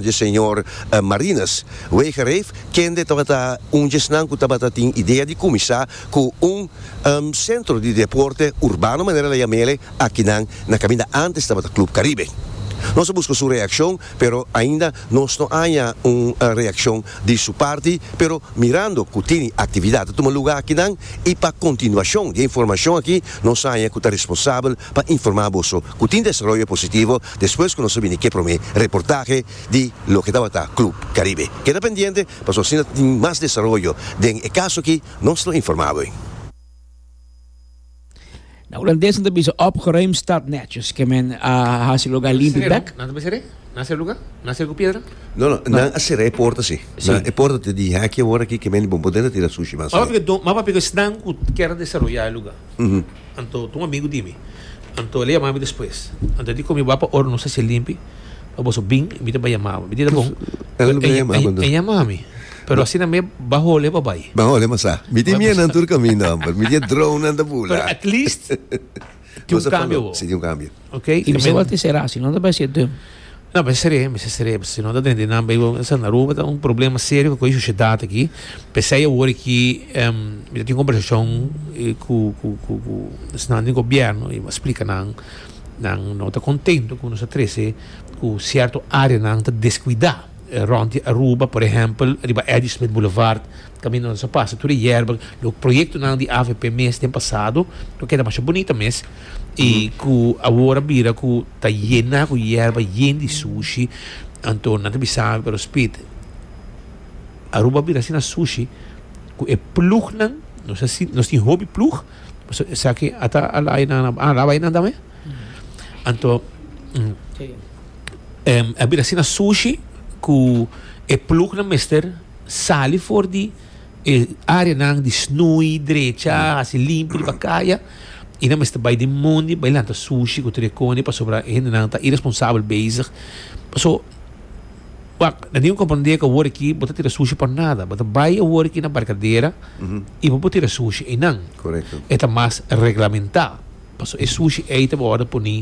dje señor Marinus Wegereef, kende tabata un dje esnan ku tabata tin idea di kuminsá ku un sentro di deporte urbano manera la yam'ele akinan na kaminda antes tabata Club Caribe. Nos a buska su reakshon pero ainda nos no aña un reakshon di su parti pero mirando ku tini aktividat ta tuma lugá akinan i pa kontinuashon di e informashon aki nos aña ku ta responsabel pa informá boso ku tin desaroyo positivo despues ku nos a bini ke promé reportahe di loke tabata Club Caribe. Keda pendiente pasobra si ta tin mas desaroyo den e kaso aki nos lo informá bo. Na Hulandes nan ta bisa opgeruimd stad netjes ke men a hasi lugá limpi bèk. No no, nan a sera e porta si. Nan e porta ta di hèkje ora aki ke men bon podendo tira sushi mas. Mapa piko esnan ku kier desaroyá e lugá. Anto, ta un amigu di mi. Anto, el a yama mi despues. Anto, el di ku mi, Bo a pa ora nos hasia limpi, pa boso bin, mi ta bai yama bo. Mi di, Ta bon. Pero, e yama mi. Pero asina mes ba holi e babai. Ba holi e masá. Mi tin mienan tur kaminda, homber. Mi tin e dronenan ta bula. Pero at least tin un kambio bo. Si, tin un kambio. Ok. Y mi sabor te será, si no ta bay ser dum. No, mi seré, mi seré, si no ta dende nan bay go, sa na Aruba ta un problema serio cu e sociedad aki. Pesey awor aki, em, mi ta tin conversacion cu, cu, cu, cu esnan den gobierno y mi a splica nan, nan no ta contento cu nos a trece cu cierto areanan ta descuida. Rond di Aruba, por ehempel, riba Ladysmith Boulevard, Tambe nos a pasa tur e yerba, lo proyectonan di avp mes den pasado lo keda masha bunita mes y cu awor a bira cu ta yena cu yerba yen di sushi anto nan ta bisa mi pero Speed Aruba a bira asina sushi cu e plugnan nos a si nos tin hopi plug pasobra esaki ata a laya nan a a laba e nan tambe anto a bira asina sushi cu e plugnan mester sali for di e areanan di snoei drecha hasi limpu riba kaya y nan mester bay den mondi bay lanta sushi cu tur e cone pasobra e hendenan ta irresponsabel bezig paso wak nan tin cu comprende cu awor aki bo ta tira sushi pa nada bo ta bay awor aki na barcadera y bo por tira sushi eynan Correcto. e ta mas reglamenta paso e sushi ey ta wordo poni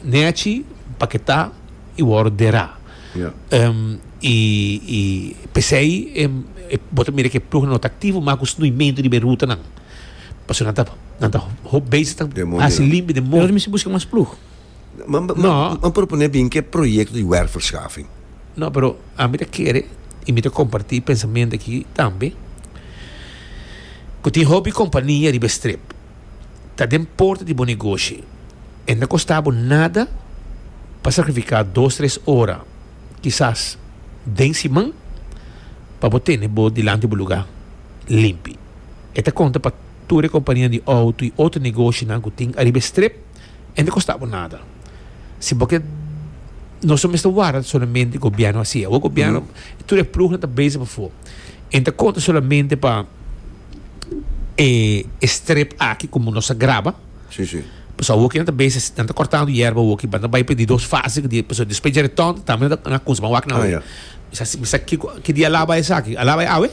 nechi paketa y wordo dera. Yeah. Em, i, i pesei em, e, bo ta mira ke ploeg no ta aktivo mas ku snuimentu riba e rutanan. Paso nan ta nan ta hop bezig ta Den mondi, hasi no. limpi den Pero mondi. mi si buska mas ploeg. Man, man, No. man propone bin ke proyecto di werfverschaffing. No, pero ami ta kere i mi ta kompartí e pensamentu aki tambe ku tin hopi kompania riba e strip. ta den porta di bo negoshi e no ta kosta bo nada pa sakrifiká dos tres ora, kisas den siman, pa bo tene bo dilanti bo lugá limpi. E ta konta pa tur e kompanianan di outo i otro negoshinan ku tin ariba e strip, e no ta kosta bo nada. Si bo ke nos no mester warda solamente gobièrnu a hasi, awor gobièrnu tur e plugnan ta beza pafó e no ta konta solamente pa. e strip aki como nos a graba Sí, sí. pues awoki nan ta bezi nan ta cortando yerba awoki ba nan ta bay p'e di dos fase di pues despues dje return tambe nan ta nan a cons ban wak nan Ah, awe ya. mi sa mi sa kico ki dia a laba esaki a laba e awe?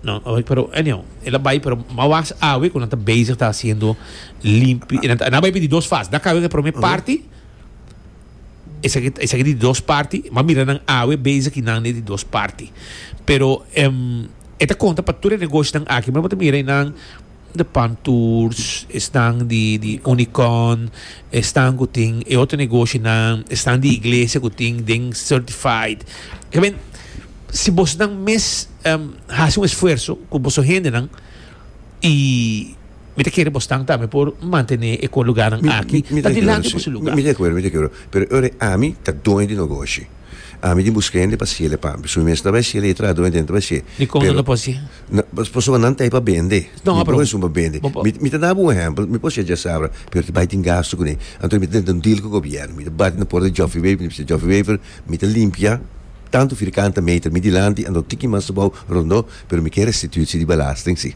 no oye pero anyhow el a bay pero mas wak awe cu nan ta bezig ta haciendo limpi e nan ta nan a bay p'e di dos fase nan a caba e prome parti Esaki ta esaki di dos parti. Bo a mira nan awe bezig i nan e di dos parti. Pero em e ta konta pa tur e negoshonan aki. Bo ta mira esnan di Pan Tours, esnan di di Unicon, esnan ku tin e otro negoshonan, esnan di iglesia ku tin den certified. Ta bin si bosnan mes hasi un esfuerso ku boso hendenan i. Mi ta kere bosnan tambe por mantené e kon lugánan aki ta dilanti ku su lugá. Mi ta de akuerdo, mi ta de akuerdo. Pero e ora ami ta doño di nogoshi, ami tin buska hende pa siel e pampi. So mi mester ta bai siel ei traha doño den ta bai siel. Dikon nan ta por siel? Pasobra nan ta ei pa bende. Mi por bai esun pa bende. Mi ta daba un ehèmpel, mi por siel djasabra, pero ta bai tin gastu kuné. Anto mi ta tenta un deal ku gobièrnu. Mi ta bati na por di Joffi Wever, mi ta bisa, Joffi Wever, mi ta limpia tantu firkanta meter mi dilanti, anto tiki mas abou rondó, pero mi ke restituit si di belasting si.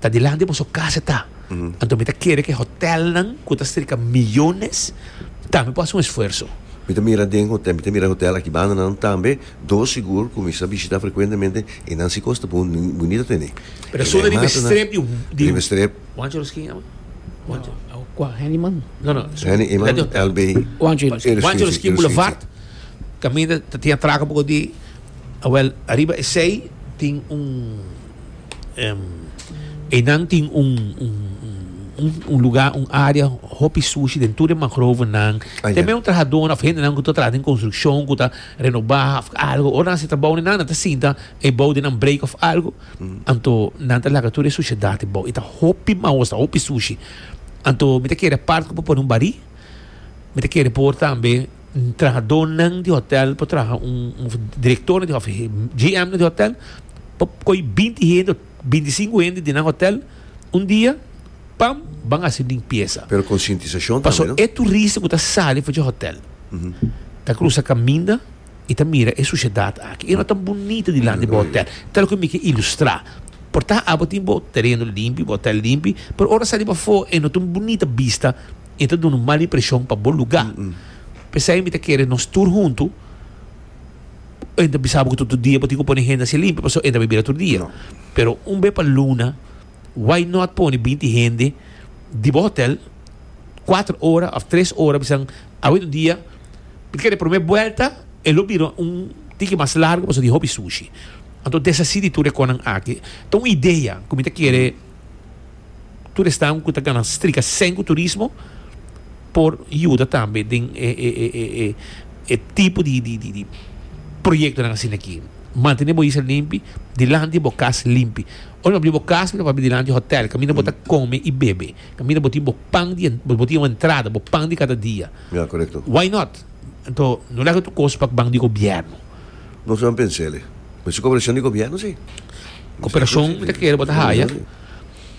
ta dilanti boso casa ta. Anto mi ta kere ku e hotelnan ku ta strika miyones tambe por hasi un esfuerso. Mi ta mira den hotel, mi ta mira hotel aki bandanan tambe, dos sigur ku mi sa bishita frekuentemente i nan si kos ta bon bunita tene. Pero su na riba e strep di. Riba e strep. Juancho Ruskin amo? Juancho. Kua? Henny Eman? No no. Henny Eman, LB. Juancho i Ruskin. Juancho Ruskin Boulevard, kaminda ta tin atrako un poko di, awèl ariba esei tin un. Enan tin un, un, un, un lugar, un área hopi sushi den tur e mangrovenan. Ah, ya. Tem eu trahadona of hendenan ku ta traha den konstruksyon ku ta renobá of algo. Ora nan hasi trabou nenan, nan ta sinta e bou den nan breek of algo. Anto nan ta laga tur e sushedat ebou. I ta hopi maos, ta hopi sushi. Anto mi ta kere e part ku por pone un barí. Mi ta kere por tambe. Trahadónan di hotèl por traha un, direktornan di hòtel, GMnan di hotèl por koi binti hende òf binti sinku hende di nan hotèl un dia pa ban hasi limpiesa. Pero konsientisashon tambe, no? Pasobra e turista ku ta sali for dje hotèl ta krusa kaminda i ta mira e sushedat aki. E no tan bunita dilanti bo hotèl. Ta loke mi ke ilustrá. Por ta abo tin bo tereno limpi, bo hotèl limpi, pero ora sali pafó e no ta un bunita bista. e ta dun'e mal impresion pa bo luga. Pesei mi ta kere nos tur huntu, e ta bisa bo ku tutu dia bo tin ku pone hende hasi limpio pasobra e ta bira tur dia. Pero un be pa luna, why not pone binti hende di bo hotel kuater ora òf tres ora bisanan awe un dia, mi ta kere prome buelta e lo bira un tiki mas largu pasobra di hopi sushi. Anto deshasi di tur e konan aki. Ta un idea ku mi ta kere. Tur estado cu ta gana strika sen cu turismo por yuda tambe den e tipo di proyectonan asina aki. Mantene bo isla limpi, dilanti bo cas limpi. Ora bo a bri bo cas mira bo a bri dilanti hotel caminda bo ta come y bebe, caminda bo tin bo pan di bo tin bo entrada, bo pan di cada dia. Why not? Anto no laga tur cos pa ban di gobierno. Nos lo han pens'é alí. Bo hizo cooperación di gobierno, sí. Cooperación mi ta kere bo ta haya.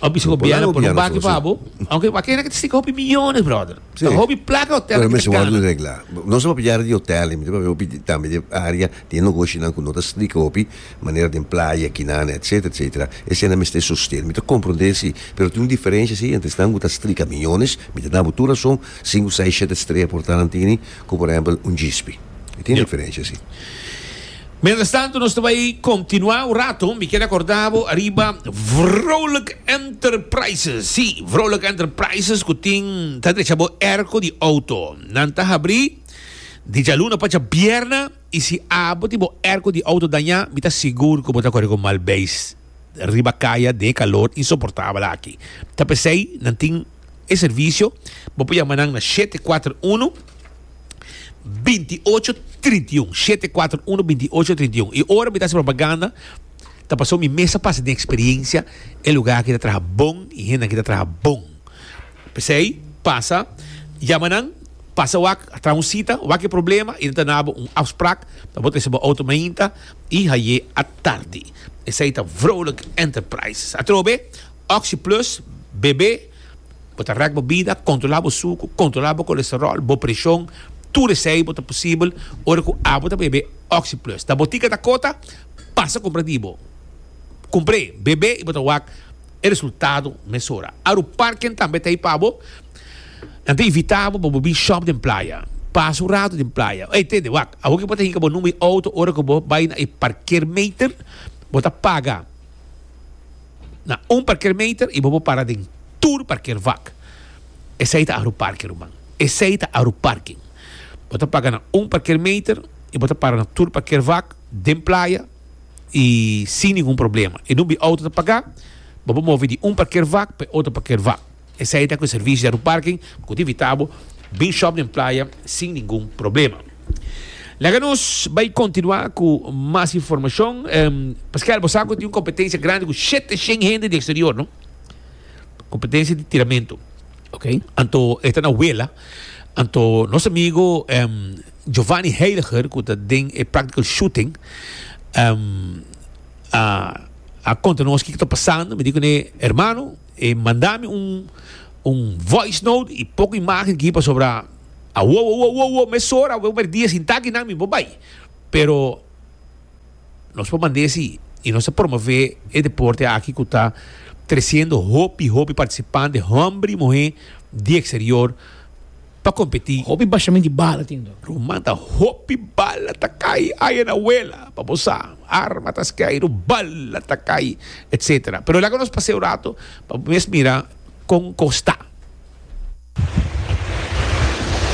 Bo hizo gobierno pone un baki pa bo. Aunque bo a kere na kisti ka hopi millones, brother. Ta hopi plaka e hotel aki ta gana. Pero mi si wòrdu regla. Nos no a pidi área di hotel ni mi debí hopi tambe di área di e nogoshinan ku no ta strikto hopi, manera den playa kinan, etcétera, etcétera. Esei nan mester sosten. Mi ta komprondé, sí, pero tin un diferensha, sí, entre esnan ku ta strik a millones, mi ta dal bo tur rason, sinku seis, shete estrella por ta nan tin. ku por ehempel un djispi. E tin diferensha si. Mientras tanto nos ta bai continua un rato, mi quiere acorda bo ariba Vrolijk Enterprises, si, Vrolijk Enterprises cu tin ta drecha bo airco di auto. Nan ta habri di djaluna pacha bierna y si abo tin bo airco di auto daña, mi ta sigur cu bo ta corre cu mal beis riba caya den e calor insoportabel aki. Ta pesey nan tin. E servicio bo por yama nan na shete kuater uno binti ocho trinta i un shete kuater uno binti ocho trinta i un i ora mi ta hasi propaganda ta paso mi mes a pasa den experiencia e lugar aki ta traha bon i hende aki ta traha bon pesey pasa yama nan pasa wak a traha un cita wak e problema y nan ta nabo un afsprak pa bo trese bo auto mainta y haye a tardi esey ta vrolijk enterprises atrobe Oxi Plus, Bebe, Bo ta rèk bo bida, kontrolá bo suku, kontrolá bo kolesteròl, bo preshon, tur esei bo ta posibel ora ku abo ta bebe Oxi Plus. Ta bo tika ta kota? Pasa kumpra di bo. Kumpr'é, bebe i bo ta wak e resultado mesora. Aru parken tambe ta ei pa bo. Nan ta invitá bo pa bo bin shòp den playa. Pasa un ratu den playa. Ey tende, wak, awor ku bo ta hika bo number di outo ora ku bo bai na e parkeermeter, bo ta paga. na un parkeermeter y bo por para den tur parkeervak. Esey ta agroparke ruman. Esey ta agroparking. Bo ta paga na un parkeermeter y bo ta para na tur parkeervak den playa y sin ningun problema. E number di auto ta paga, bo por move di un parkeervak pa e otro parkeervak. Esei ta cu e servicio di Aeroparking cu ta invita bo bin shop den playa sin ningun problema. Laga nos bay continua cu mas informacion. Pascual, bo sa cu tin un competencia grandi cu shete shen hende di exterior, no? Competencia di tiramento. Ok. Anto e ta na Wela. Anto nos amigo Giovanni Heiliger cu ta den e practical shooting a conta nos kico ta pasando. Mi di cune, Hermano. E manda mi un un voice note y poco imagen aquí pasobra a wo wo wo wo mes hora we perdí e sin taki nan mi por bay pero nos por mand'e si y nos ta promove e deporte aki cu ta treciendo hopi hopi participante homber y muhe di exterior pa competi. Hopi bashamenti bala tin do. Ruman ta hopi bala ta cay aya na wela pa bo sa arma ta skeiro bala ta cay etc. Pero laga nos paseo rato pa bo mes mira con cos ta.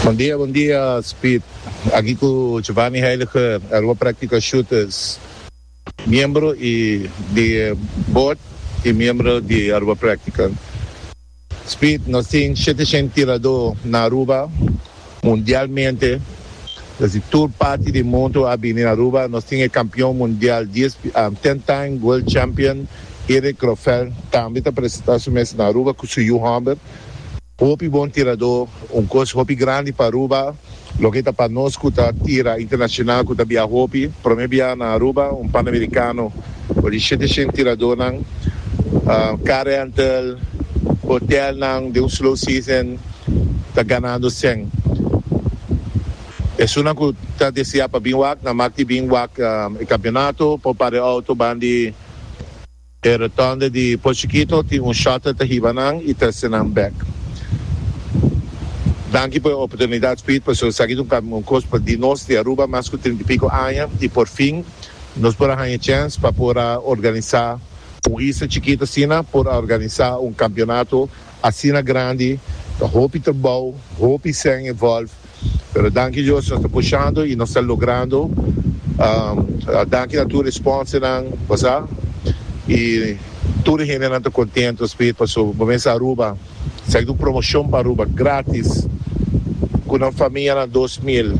Bon dia bon dia Speed aki cu Jovani Heiliger Aruba Practical Shooters. Miembro y di e Board y miembro di Aruba Practical. Speed, Nos tin shete shen tiradó na Aruba, mundialmente. Es di tur parti di mundu a bini na Aruba. Nos tin e kampion mundial dies, ten time world champion, Erik Grofell, tambe ta presentá su mes na Aruba ku su yu hòmber. Hopi bon tiradó, un kos hopi grandi pa Aruba. Loke ta pa nos ku ta tira internashonal ku ta biaha hopi, promé biaha na Aruba un panamerikano for di shete shent tiradónan, kar rental, hotèlnan den un slow season ta ganando sèn. Esunnan ku ta deseá pa bin wak na mak di bin wak e kampionato pa un par di outo bandi. E retonde di Pochiquito tin un shuttle ta hiba nan y trece nan bek. Danki por e oportunidad Speed pasobra esaki ta un cam un cos pa di nos di Aruba mas cu trinta y pico aña y por fin nos por a haña chance pa por a organiza un isla chikito asina por a organiza un campeonato asina grandi ta hopi trabao hopi sèn involve pero danki Dios nos ta pushando y nos ta logrando danki na tur e sponsornan cosa y tur e hendenan ta contento speed paso bo mester Aruba esaki ta un promocion pa Aruba gratis cu nan famianan dos mil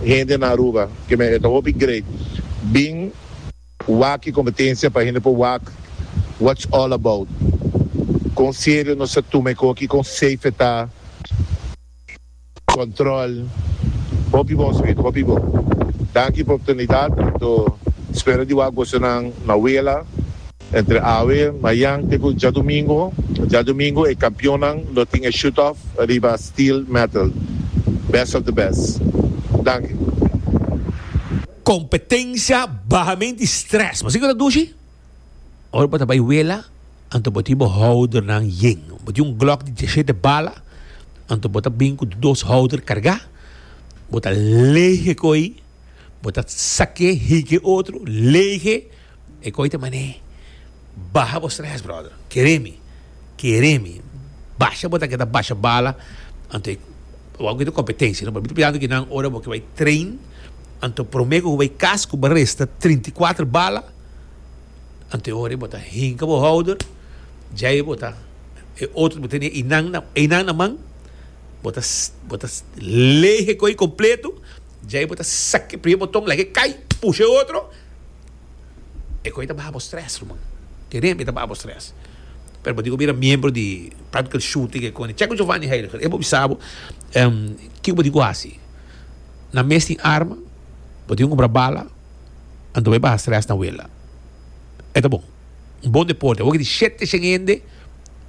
hende na Aruba que me e ta hopi great bin wak e competencia pa hende por wak what's all about con serio nos ta tuma e coki con safe e ta. Control hopi bo Smith hopi bo. Danki pa oportunidad anto spera di wak gozo nan na wela entre awe mayan te cu djadomingo. Djadomingo e campeon nan lo tin e shoot off riba steel metal. Best of the best. Danki. Competencia bahamenti stress. Mas tin cu ta duci? Ora bo ta bai wela, anto bo tin bo houdernan yen. Bo tin un glok di diashete bala, anto bo ta bin ku dos houder kargá. Bo ta leeg e koi, bo ta sak'é, hiki e otro, leeg'é. E koi ta man'é, Baha bo strès, bròder. Kere mi. Kere mi. Basha bo ta keda basha bala, anto e bo a genti kompetensia. No por mi ta piensa ki nan ora bo ke bai train, anto promé ku bo bai kas ku bo resta trinta i kuater bala, Anto ora bo ta hinka bo houder, djei bo ta e otro bo ta tene einan na einan na man, bo ta bo ta leeg e koe completo, djei bo ta sak e primer boton laga e cay, pusha e otro, e koe ta baha bo stress ruman, te remte ta baha bo stress, pero bo tin ku bira miembro di practical shooting e koe, check with Jovani Heiliger e bo bisa bo kiko bo tin ku hasi, nan mes tin arma, bo tin ku compra bala. Anto e baha stress na wela. E ta bon. Un bon deporte. Awor ke tin shete shen hende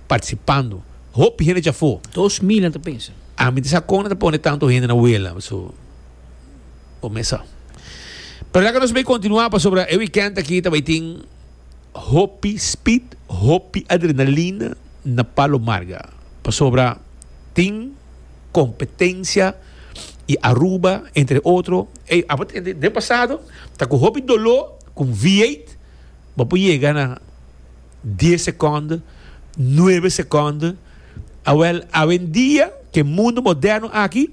participando. Hopi hende dja for. Dos mil nan ta pensa. A mi ta sa kon nan ta pone tanto hende na wela. So, bo mesa. Pero laga nos bai continua pasobra e weekend aki ta bai tin hopi speed, hopi adrenalina na Palo Marga. Pasobra tin. competencia y Aruba entre otro ey abo ta den pasado ta cu hopi dolo cu un V8 bo por yega na dies seconden nueve seconden awel awendia ke mundo moderno aki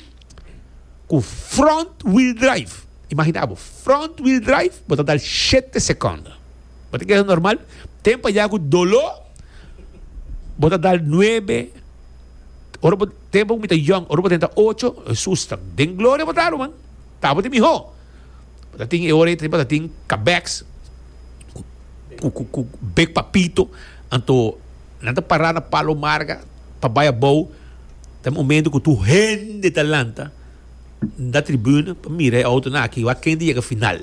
cu front wheel drive imagina bo front wheel drive bo ta dal shete seconden bo ta keda normal tempo aya cu dolo bo ta dal nuebe Ora bo tempo ku mi ta yòn, ora bo tenta ocho, Hesus ta den gloria bo ta ruman, tabo tin mihó. Bo ta tin e ora ei bo ta tin kabèks ku ku bek pa pito, anto nan ta pará na Palo Marga pa bai abou, ta e momento ku tur hende ta lanta. N ta tribune pa mira e autonan aki wak ken ta yega final.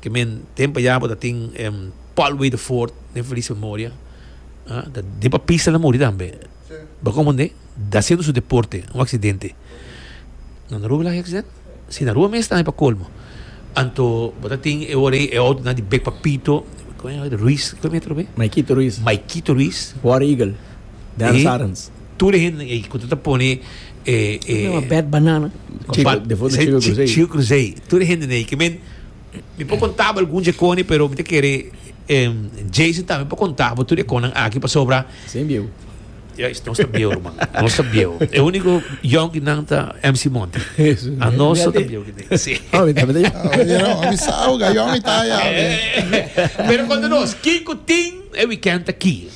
Ke men tempo ya bo ta tin em, Paul Waterford, den feliz memoria. Ah, ta den pa pista na muri tambe. Bo komprende? Da siendo su deporte, un accidente. No na Rua Velázquez accidente? Si, na Rua mes tambe pa colmo. Anto bo ta tin e ora ei e autonan di bek pa pito, Ruiz, kiko e metro be? Maikito Ruiz, Maikito Ruiz, War Eagle, Dennis Arends. Tur e hende ei ku ta ta pone e e Problema bèt banana. Chico, Ba- defo na se- Chico chi- Cruzei. Chico Cruzei. Tur e hende nei ke men mi por konta bo algun djekoni pero mi ta kere em, Jason tambe por konta bo tur djekonnan aki pasobra Sem bieu. Ya, es- nos ta bieu ruman. Nos ta bieu. E úniko yonki nan ta MC Monte. Eso. A nos ta bieu ki nei. Sí. Ah, mi también te- Ah, you know, a mi sa, oh, ga, yo, mi ta, ya, eh. Pero konta nos, kiko tin e weekend aki?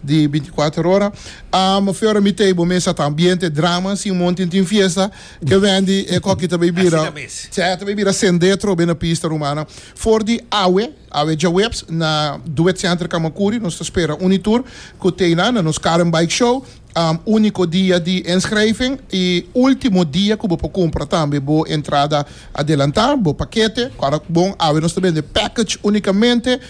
di binticuater ora. Am feora mi tei bo mesa ta ambiente drama sin mon tin tin fiesta e Wendy e cocky ta bay bira sey ta bay bira sendetro bay na pista rumana for di awe awe djaweps na duet center camacuri nos ta spera uni tur cu tei nan na nos car en bike show am unico dia di inschrijving y ultimo dia cu bo por cumpra tambe bo entrada adelanta bo paquete ora bon awe nos ta bende package unicamente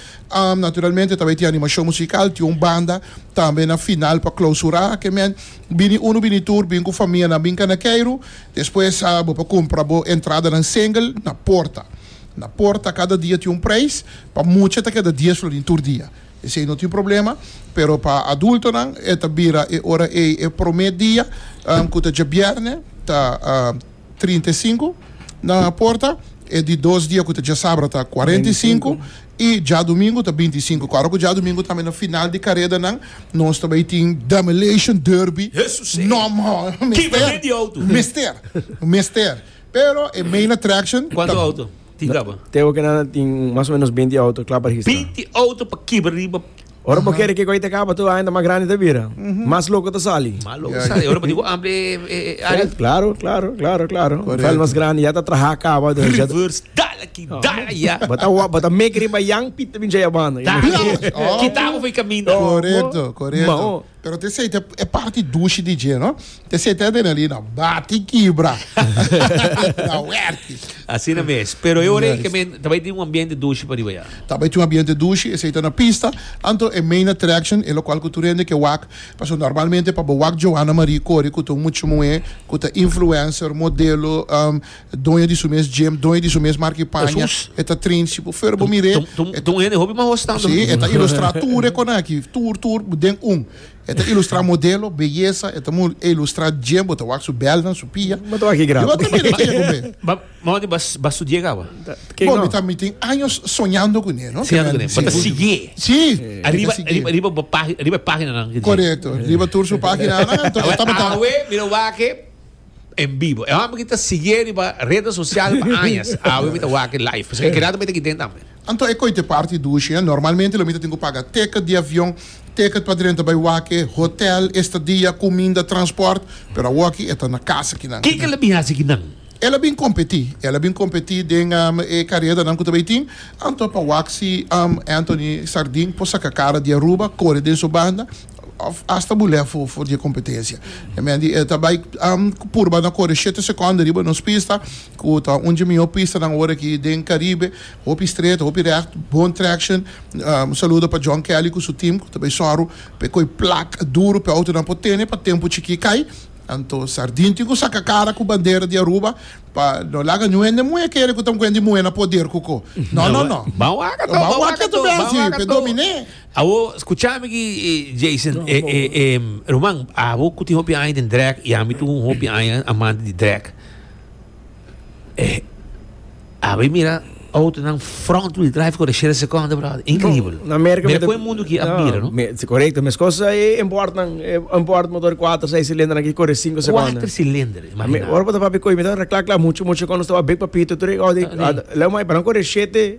Naturalmente tambe tin animashon musikal, tin un banda tambe na final pa klausurá ke men. Bini unu bini tur, bin ku famianan bin kanakeiru, despues bo por kumpra bo entradanan single na porta. Na porta kada dia tin un preis, pa mucha ta keda dies flor den tur dia, esei no tin problema, pero pa adultonan e ta bira e ora ei e promé dia ku ta djabièrnè ta. trinta i sinku, nan a porta e di dos dia ku ta djasabra ta kuarenta i sinku i djadumingu ta binti i sinku. Ku ora ku djadumingu tambe na final di karedanan nos ta bai tin Demolition Derby, no mester mester pero e main attraction ta. Kuantu outo? Tingaba. Te hopi nan a tin mas o menos binti auto kla pa registra. Binti auto pa kiba riba. Ora bo kere ke koe ta kaba tur aña ta mas grandi ta bira. Mas loko ta sali. Mas loko ta sali ora bo tin ku ampli e área. Klaro, klaro, klaro, klaro. Un veld mas grandi ya ta traha kaba. Reverse dal aki, dal aya. Bo ta bo ta meki riba Jan Piet ta bin djai a banda. Kita abo for e kaminda. Korekto, korekto. Pero te seita e parti dushi di dje, no? Te seita den ali na bati kibra. na werki. Asina mes. Pero e ora yes. men ta bai tin un ambiente dushi pa riba ya. Ta bai tin un ambiente dushi, e seita na pista. Anto e main attraction, e lokual ku tur hende ke wak. Paso normalmente pa bo wak Johanna Marie kore ku ta un muchu muhé ku ta influencer, modelo, um, Doño di su mes gym, doño di su mes marki paña, e ta train si bo fero bo mir'é. T un hende hopi mas hoos tando. Sí, e ta ilustrá tur e konan aki, tur, tur den un. E ta ilustrá modelo, beyesa, e ta mo ilustrá gym, bo ta wak su bèlnan, su pia. Bo ta wak aki gratis. Bo ta mira ki e ku be. Ba, mama di bas, bas studi'é kawa? Ke no? Bo, mi ta, mi tin años soñando kuné, no? Soñando kuné. Bo ta sigui'é. Sí. Ariba, ariba, ariba bo pag, ariba e paginanan. Korekto. Riba tur su paginanan, anto e tabata. Awe, mi lo wak e. en bibo. E hombre ki ta sigue riba redes sociales pa añas, awe mi ta wak live. Pasobra e keda mi ta kiten tambe. Anto e koite parti dushi, eh? Normalmente lo mi ta tin ku paga ticket di avion, ticket pa drenta bai wake, hotel, estadia, kuminda, transport, pero awoki e ta na kasa kinan. Kiko el a bin hasi kinan? El a bin kompetí, el a bin kompetí den e karedanan ku ta bai tin, anto pa wak si Anthony Sardin por saka kara di Aruba, kore den su banda, Of asta bul'é for for di e kompetensia. E men di e ta bai purba na kore shete sekònde riba nos pista, ku ta un dje mihó pistanan ora aki den Karibe. Hopi stret, hopi rèkt, bon traction. Un saludo pa John Kelly ku su team ku ta bai sòru pa e koi plak duru pa e outonan por tene pa tempu chikí kai. Anto Sardin tin ku saka kara ku bandera di Aruba pa no laga niun hende muhé kere ku ta un kuent di muhé na poder ku ko. No, no, no. Ban waka to, ban waka to, ban waka to. Pe dominé. Awo skuchá mi aki Jason, e e e ruman, abo ku tin hopi aña den drèk i ami tin un hopi aña amante di drèk, e abo i mira outonan front wheel drive kore shele sekonde bròder, inkribel. Na Amerika Mira mita- kon e mundu ki a No, mira, no? me- si, Correcto, mes cosa e import nan, e import motor cuatro, seis cilindro nan ki corre cinco segundos. Kuater silinder, Mi, imagina. ora pa ta papi coi, mi ta reclacla mucho, mucho cuando estaba big papito, tre, oh, di, Tá, nee. ah, leu mai, para não correr shete,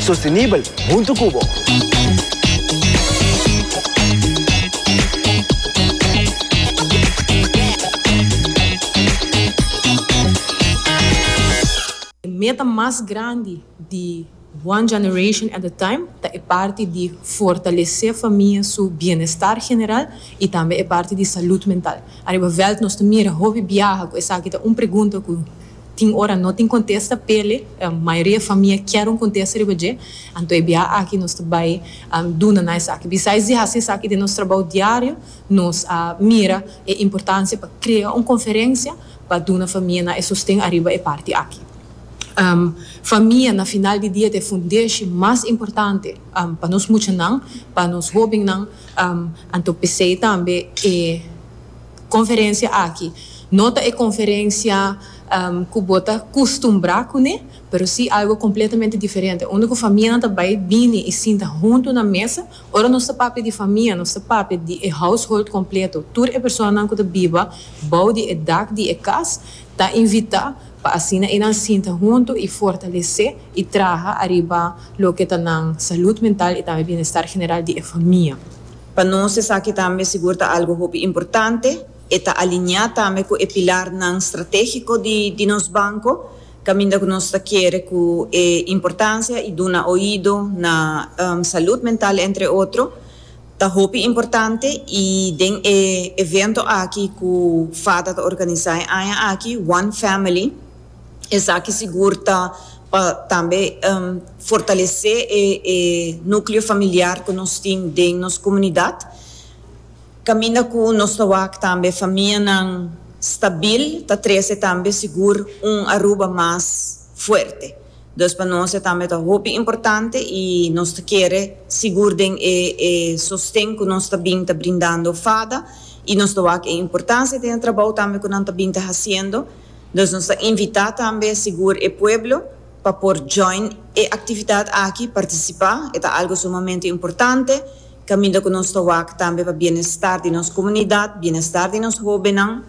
sostenibel huntu ku bo. E meta mas grandi di One Generation at a Time ta e parti di fortalesé famia su bienestar general i tambe e parti di salud mental. Ariba veld nos ta mira hopi biaha ku esaki ta un pregunta ku Tin ora no tin contesta pele mayoria famia kier un contesta riba dje, anto e bia aki nos ta bay duna na esaki. Bisais di haci esaki den nos trabao diario nos a mira e importancia pa crea un conferencia pa duna famia nan e sosten ariba e parti aki. Famia na final di dia ta e fundeshi mas importante pa nos muchanan, pa nos hobennan, anto pesey tambe e. Conferencia aki no ta e conferencia cu bo ta custumbra cune, pero si algo completamente diferente, unda cu famianan ta bay bini y sinta hunto na mesa. Ora nos ta papia di famia, nos ta papia di e household completo, tur e personanan cu ta biba bou di e dak di e cas ta invita pa asina enan sinta hunto y fortalece y traha ariba loke ta nan salud mental y tambe bienestar general di e famia. Pa nos esaki tambe sigur ta algu hopi importante. E ta alineá tambe ku e pilarnan stratégiko di nos banko, kaminda ku nos ta kere ku e importansia i duna oido na salud mental entre otro ta hopi importante i den e evento aki ku fata ta organisá e aña aki, One Family, Esaki sigur ta pa tambe fortalesé e núkleo familiar ku nos tin den nos komunidat, kaminda ku nos ta wak tambe famianan stabil, ta trese tambe sigur un Aruba mas fuerte. Dus pa nos e tambe ta hopi importante i nos ta kere sigur den e e sosten ku nos ta bin ta brindando fada i nos ta wak e importansia den e trabou tambe ku nan ta bin ta hasiendo. Dus nos ta invitá tambe sigur e pueblo pa por join e aktividat aki, partisipá, e ta algu sumamente importante, kaminda ku nos ta wak tambe pa bienestar di nos komunidat, bienestar di nos hóbennan,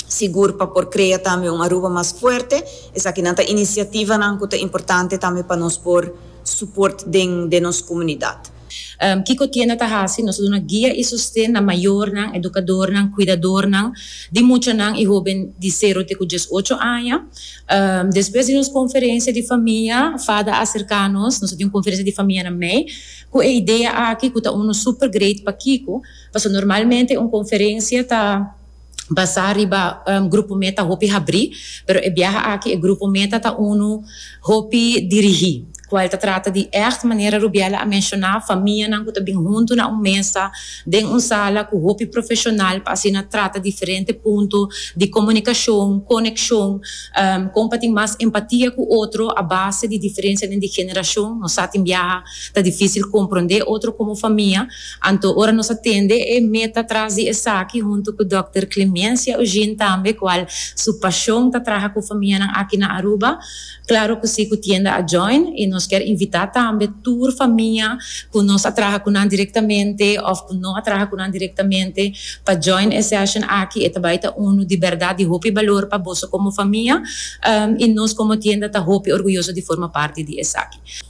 sigur pa por krea tambe un Aruba mas fuerte. Esakinan ta inisiativanan ku ta importante tambe pa nos por suport den nos komunidat. Kiko tienda ta hasi? Nos ta duna guia i sosten na mayornan, edukadornan, kuidadornan di muchanan i hoben di sero te ku dies ocho aña. Despues di nos konferensia di famia, Fada a serká nos, nos a tin un konferensia di famia na mei, ku e idea aki ku ta unu super great pa kiko? Pasobra normalmente un konferensia ta. basá riba grupo meta hopi habrí, pero e biaha aki e grupo meta ta unu hopi dirigí, ku el ta trata di ègt, manera Rubiela a menshoná, famianan ku ta bin huntu na un mesa den un sala ku hopi profeshonal pa asina trata diferente punto di komunikashon, konekshon, kon pa tin mas empatia ku otro a base di diferensianan di generashon. Nos sa tin biaha ta difísil komprondé otro komo famia. Anto ora nos a tende e meta tras di esaki huntu ku dòkter Clemencia Eugene tambe kual su pashon ta traha ku famianan aki na Aruba, klaro ku si ku tienda a join i nos kier invitá tambe tur famia ku nos a traha ku nan direktamente òf ku no a traha ku nan direktamente pa join e session aki e ta bai ta unu di bèrdat di hopi balor pa boso komo famia i nos komo tienda ta hopi orguyoso di forma parti di esaki.